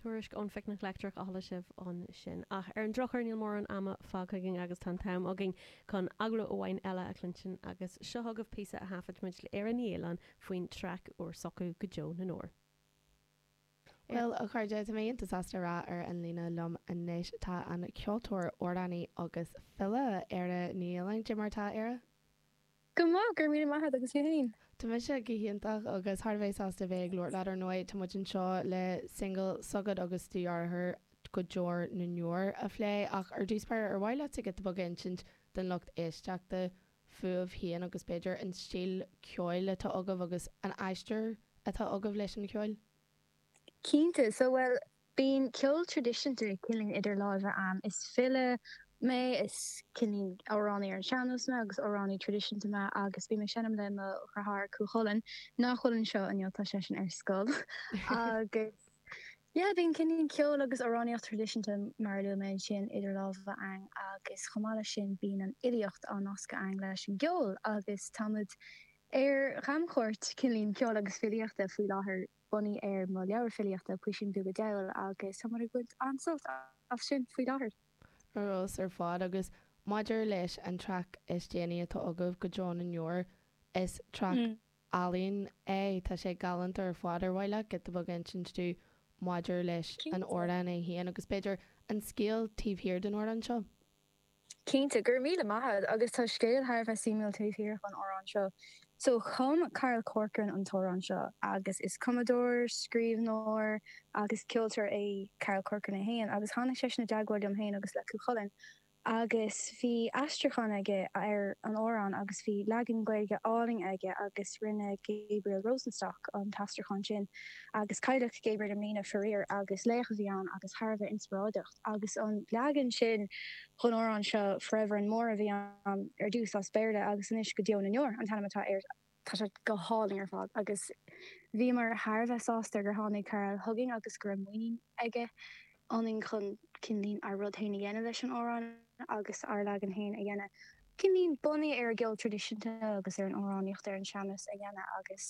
Tuairisc ón Phicnic Leictreach a chuala sibh ansin. Ach ar an drochuair, níl mórán ama fágtha againn agus tá an t-am againn chun agallamh amháin eile a chluintin agus seo chugaibh píosa a thaifid muid le Éire Ní Fhaoláin faoin traic úr s'acu go deo na ndeor. Bhuel, a chairde, tá mé iontach sásta a rá ar an líne liom anois. Tá an ceoltóir, amhránaí agus file Éire Ní Fhaoláin cad é mar atá, Éire. Go maith, go raibh míle maith agat agus tú féin? Tá mise go hiontach agus thar a bheith sásta bheith ag labhairt leat. Ar ndóigh, tá muid anseo le singil s'agat agus do dheartháir, Go Deo na nDeor, a phlé, ach ar dtús b'fhéidir, ar mhaith leat giota beag a insint don lucht éisteachta fúibh féin agus b'fhéidir an stíl ceoil atá agaibh agus an aistear atá agaibh leis an cheol? Cinnte. So, bhuel, Bíonn ceol traidisiúnta cineál idir lámha againn. Is file mé, is cineál amhránaí ar an sean-nós mé agus amhránaí traidisiúnta mé agus bím ag seinm le mo dhriotháir Cú Chulainn, nach bhfuil anseo inniu, tá seisean ar scoil, agus yeah, bíonn cineál ceol agus amhránaíocht traidisiúnta, mar a luaigh mé ansin, idir lámha againn agus chomh maith leis sin bíonn an fhilíocht á nascadh againn leis an gceol agus táimid ar chamchuairt cineál Ceoil agus Filíochta faoi láthair. bunaithe ar mo leabhar filíochta, Puisín Beag an Diabhail, agus tá muid ag baint an-sult as sin faoi láthair. Ar fheabhas ar fad, agus maidir leis an traic is déanaí atá agaibh, Go Deo na nDeor, is traic álainn é, tá sé galánta ar fad. Ar mhaith leat giota beag a insint dúinn maidir leis an amhrán é féin, agus b'fhéidir an scéal taobh thiar den amhrán seo? Cinnte, go raibh míle maith agat, agus tá scéal thar a bheith suimiúil taobh thiar den amhrán seo. So, chum Carl Corcoran an t-amhrán seo, agus is cumadóir, scríbhneoir agus ceoltóir é Carl Corcoran é féin, agus tháinig seisean i dteagmháil liom féin agus le Cú Chulainn, agus bhí aistriúchán aige ar an amhrán, agus bhí leagan Gaeilge álainn aige, agus rinne Gabriel Rosenstock an t-aistriúchán sin, agus cailleadh Gabriel i mbliana, faraor, agus laoch a bhí ann agus thar a bheith inspioráideach. agus an leagan sin den amhrán seo, Forever and More, a bhí ann ar dtús as Béarla agus anois go deo na ndeor an t-ainm atá air. Tá sé go hálainn ar fad agus bhíomar thar a bheith sásta gur tháinig Carl chugainn agus go raibh muinín aige ionainn chun cineál ár rud féin a dhéanamh leis an amhrán agus ár leagan féin a dhéanamh. Cineál, bunaithe ar an gceol traidisiúnta agus ar an amhránaíocht, ar an sean-nós a dhéanamh agus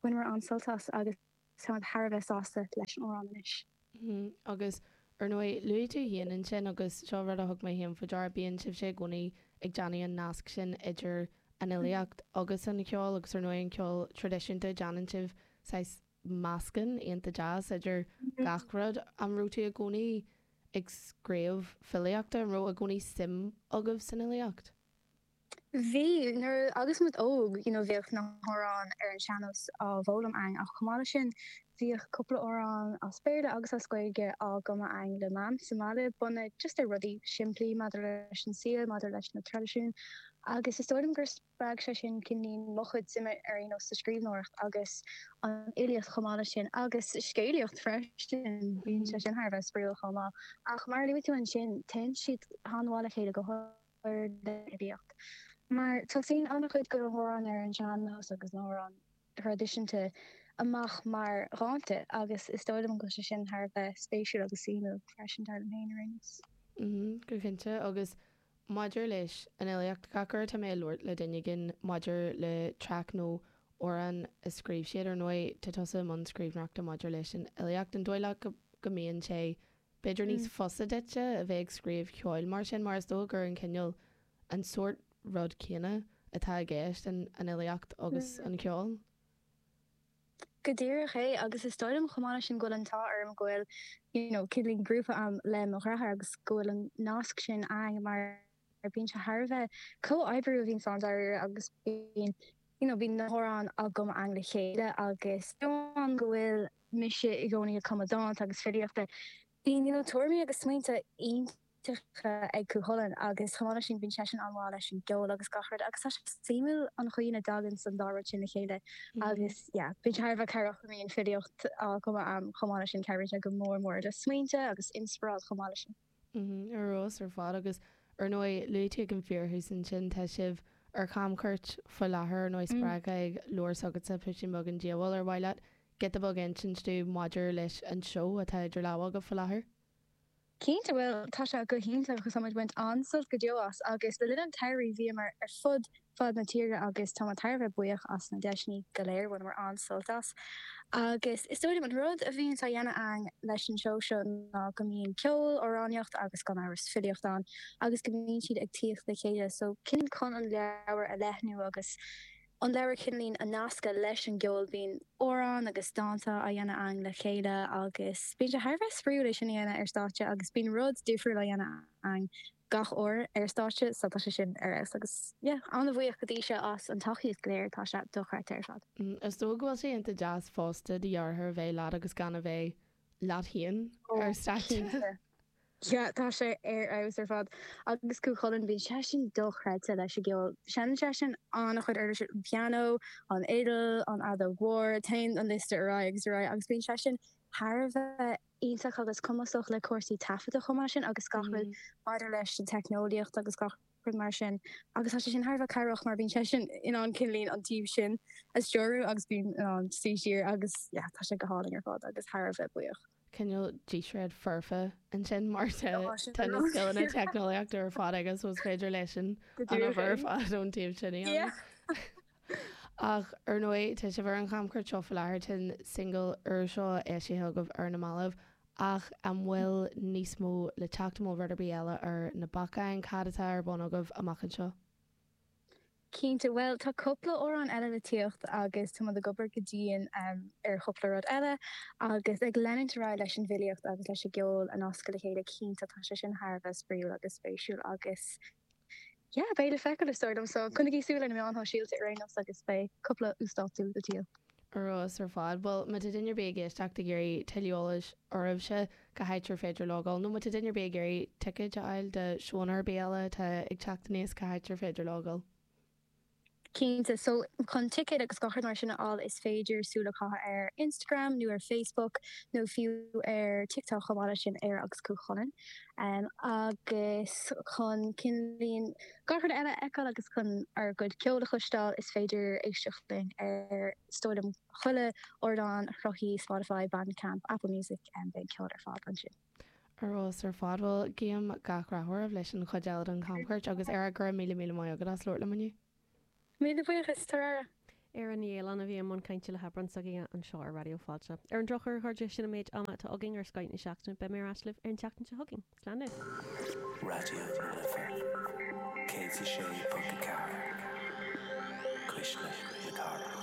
bhaineamar an-sult as agus. Tá mé thar a bheith sásta leis an amhrán anois. Hm, agus, ar ndóigh, luaigh tú féin ansin, agus seo rud a thug mé féin faoi deara, bíonn sibhse i gcónaí ag déanamh an nasc sin idir an fhilíocht agus an ceol, agus ar ndóigh an ceol traidisiúnta, déanann sibh saghas meascán iontach deas idir gach rud. An raibh tú i gcónaí ag scríobh filíochta, an raibh i gcónaí suim agaibh san fhilíocht? Bhí, nuair agus muid óg, you know bhíodh na hamhráin ar an sean-nós á bhfoghlaim againn ach chomh maith leis sin bhíodh cúpla amhrán as Béarla agus as Gaeilge á gcumadh againn le mam sa mbaile bunaithe just ar rudaí simplí maidir leis an saol, maidir leis na traidisiúin agus is dóigh liom gur spreag sé sin cineáilín mo chuid suime ar aon nós sa scríbhneoireacht agus an fhilíocht chomh maith leis sin agus scéalaíocht freisin, bíonn sé sin thar a bheith spraíúil chomh maith ach mar a luaigh tú ansin téann siad an-mhaith le chéile go chur lena oibiacht, mar tosaíonn an-chuid de na hamhráin ar an sean-nós agus na hamhráin thraidisiúnta amach mar dhánta agus is dóigh liom go bhfuil sé sin thar a bheith spéisiúil agus suimiúil freisin, dar liom féin, ar aon nós. Go cinnte, agus maidir leis an fhilíocht, gach uair atá mé ag labhairt le duine éigin maidir le traic nó amhrán a scríobh siad, ar ndóigh, tá tusa i mbun scríbhneoireachta maidir leis an fhilíocht, an dóigh leat go mbíonn sé B'fhéidir níos fusa duitse a bheith ag scríobh ceoil mar sin, mar is dóigh gur an cineál, an sórt rud céanna atá i gceist, an fhilíocht agus an ceol? Go díreach é, agus is dóigh liom chomh maith leis sin go bhfuil an t-ádh orm go bhfuil, you know, cineáilín grúpa a'm le mo dhreatháir agus go bhfuil an nasc sin a'inn mar, mar bíonn sé thar a bheith comhoibriú a bhíonns ann dáiríre agus bíonn you know bíonn na hamhráin á gcumadh againn le chéile agus amháin go bhfuil mise i gcónaí ag cumadh dánta agus filíochta bíonn you know tuairimí agus smaointe iontacha ag Cú Chulainn agus chomh maith leis sin bíonn seisean an-mhaith leis an gceol agus gach rud agus tá sé suimiúil an chaoi ina dtaganns an dá rud sin le chéile agus yeah bíonn sé thar a bheith cabhrach go mbíonn filíocht á cumadh agam chomh maith leis sin cabhraíonn sé go mór mór le smaointe agus inspioráid chomh maith leis sin. Ar fheabhas ar fad. Agus ar ndóigh, luaigh tú ag an fíorthús ansin, tá sibh ar chamchuairt faoi láthair, ar ndóigh, spreagtha ag leabhar s'agatsa, Puisín Beag an Diabhail, ar mhaith leat giota beag a insint dúinn maidir leis an seó atá idir lámha agaibh faoi láthair? Cinnte, bhuel, tá sé go hiontach agus táim ag baint an-sult go deo as agus le linn an tsamhraidh bhíomar ar fud fud na tíre agus tá mé thar a bheith buíoch as na deiseanna go léir, bhaineamar an-sult as agus is dóigh liom an rud a bhíonns á dhéanamh againn leis an seó seo ná go mbíonn ceol, amhránaíocht agus gan amhras filíocht ann agus go mbíonn siad ag tíocht le chéile so cineáilín chun an leabhar a leathnú agus an leabhar cineáilín a nascadh leis an gceol, bíonn amhráin agus dánta á dhéanamh againn le chéile agus bíonn sé thar a bheith spraíúil é sin a dhéanamh ar stáitse agus bíonn rud difriúil á dhéanamh againn gach uair ar stáitse so tá sé sin ar fheabhas agus yeah. Ana-bhuíoch go dtí seo as an tacaíocht go léir, tá sé dochreidte ar fad. Is dóigh go bhfuil sé iontach deas fosta do dheartháir a bheith leat agus gan a bheith leat féin ar stáitse. Cinnte. Yeah, tá sé ar fheabhas ar fad. Agus Cú Chulainn, bíonn seisean dochreidte leis an gceol. Seineann seisean an-chuid uirlisí, an pianó, an fhidil, an fheadóg mhór, téann an liosta ar aghaidh agus ar aghaidh agus bíonn seisean thar a bheith iontach agus cumasach le cúrsaí taifeadta chomh maith sin agus gach rud maidir leis an teicneolaíocht agus gach rud mar sin agus tá sé sin thar a bheith cabhrach mar bíonn sé sin in ann cineáilín an taobh sin a stiúradh agus bím in ann suí siar agus yeah tá sé go hálainn ar fad agus thar a bheith buíoch. cineál díséad foirfe ansin mar tá tá na scileanna teicneolaíochta ar fad aige so is féidir leis an an obair ar fad den taobh sin yeah Ach, ar ndóigh, tá sibh ar an gcamchuairt seo faoi láthair, tá an singil úr seo eisithe agaibh ar na mallaibh, ach an bhfuil níos mó le teacht, an bhfuil rud ar bith eile ar na bacáin, cad atá ar bun agaibh amach anseo? Cinnte, bhuel, tá cúpla amhrán eile le tíocht agus táimid ag obair go dian ar chúpla rud eile agus ag leanúint ar aghaidh leis an bhfilíocht agus leis an gceol a nascadh le chéile, cinnte, tá sé sin thar a bheith spraíúil agus spéisiúil agus. yeah, beidh le feiceáil, is dóigh liom. So coinnigí súil ar na meáin shóisialta ar aon nós agus beidh cúpla uasdátú le tíocht. Ar fheabhas ar fad. Bhuel, má tá duine ar bith ag éisteacht ag iarraidh tuilleadh eolais oraibhse, cá háit ar féidir logáil? Nó má tá duine ar bith ag iarraidh ticéid a fháil do seónna ar bith eile atá ag teacht aníos, cá háit ar féidir logáil? Cinnte. So, chun ticéid agus gach rud mar sin a fháil is féidir súil a chaitheamh ar Instagram nó ar Facebook nó fiú ar TikTok chomh maith leis sin, Éire agus Cú Chulainn. Agus chun cineáilín gach rud eile a fheiceáil agus chun ár gcuid ceoil a chloisteáil is féidir éisteacht linn ar, is dóigh liom, chuile ardán sruthaithe Spotify, Bandcamp, Apple Music, beidh an ceol ar fad ansin. Ar fheabhas ar fad. Bhuel, guím gach rath oraibh leis an chuid eile den chamchuairt agus arís go raibh míle míle maith agat as labhairt liom inniu. Míle buíochas, tabhair aire! Ar an ndialann a bhí i mbun cainte le hAibreán s'againne anseo ar Raidió Fáilte. Ar an drochuair, a chairde, sin an méid ama atá againn ar Skype na seachtaine. Beidh mé ar ais libh ar an tseachtain seo chugainn. Slán libh. Raidió na Life 106.4 Cuisle na Cathrach.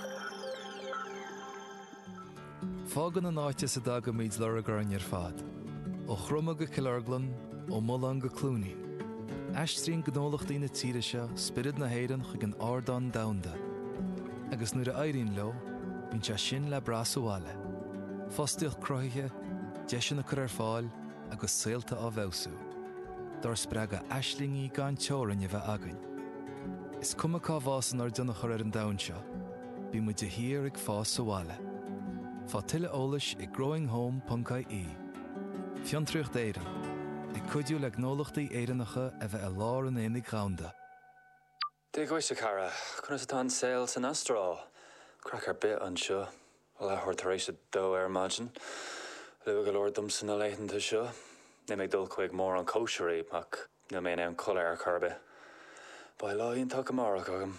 Fágann an áit as a dtagaimid lorg orainn ar fad, ó Chroma go Cill Orglan, ó Mullán go Cluainín. Aistríonn gnólachtaí na tíre seo spiorad na hÉireann chuig an ardán domhanda, agus nuair a éiríonn leo, bíonn sé sin le brath sa bhaile, fostaíocht cruthaithe, deiseanna á gcur ar fáil agus saolta á bhfeabhsú. Dár spreagadh aislingí gan teorainn a bheith againn. Is cuma cá bhfásann ár dtionchar ar an domhan seo, Bíonn muid de shíor ag fás sa bhaile. Faigh tuilleadh eolais ag growinghome.ie. Fiontraíocht Éireann, ag cuidiú le gnólachtaí Éireannacha a bheith i lár an aonaigh dhomhanda. Dia dhuit, a chara. Conas atá an saol san Astráil? Craic ar bith anseo. Leathuair tar éis a dó ar maidin. Luath go leor domsa na laethanta seo. Níl mé ag dul chuig mórán cóisirí, ach níl mé in ann codladh ar chor ar bith. Beidh lá iontach amárach agam.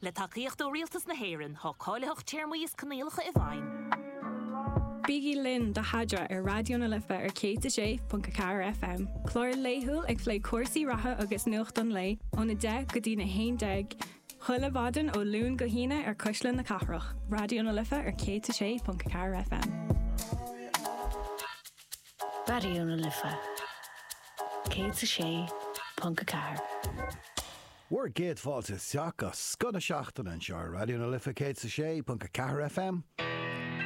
Le tacaíocht ó Rialtas na hÉireann, tá cáilitheacht, téarmaí is coinníollacha i bhfeidhm. Bígí linn do Sheadra ar Raidió na Life ar 106.4 FM, clár laethúil ag plé cúrsaí reatha agus nuacht an lae ón 10 go dtí'n 11 chuile mhaidin ó Luan go hAoine ar Cuisle na Cathrach, Raidió na Life ar 106.4 FM. Raidió na Life 106.4. Bhur gcéad fáilte isteach go scoth na seachtaine anseo ar Raidió na Life 106.4 FM.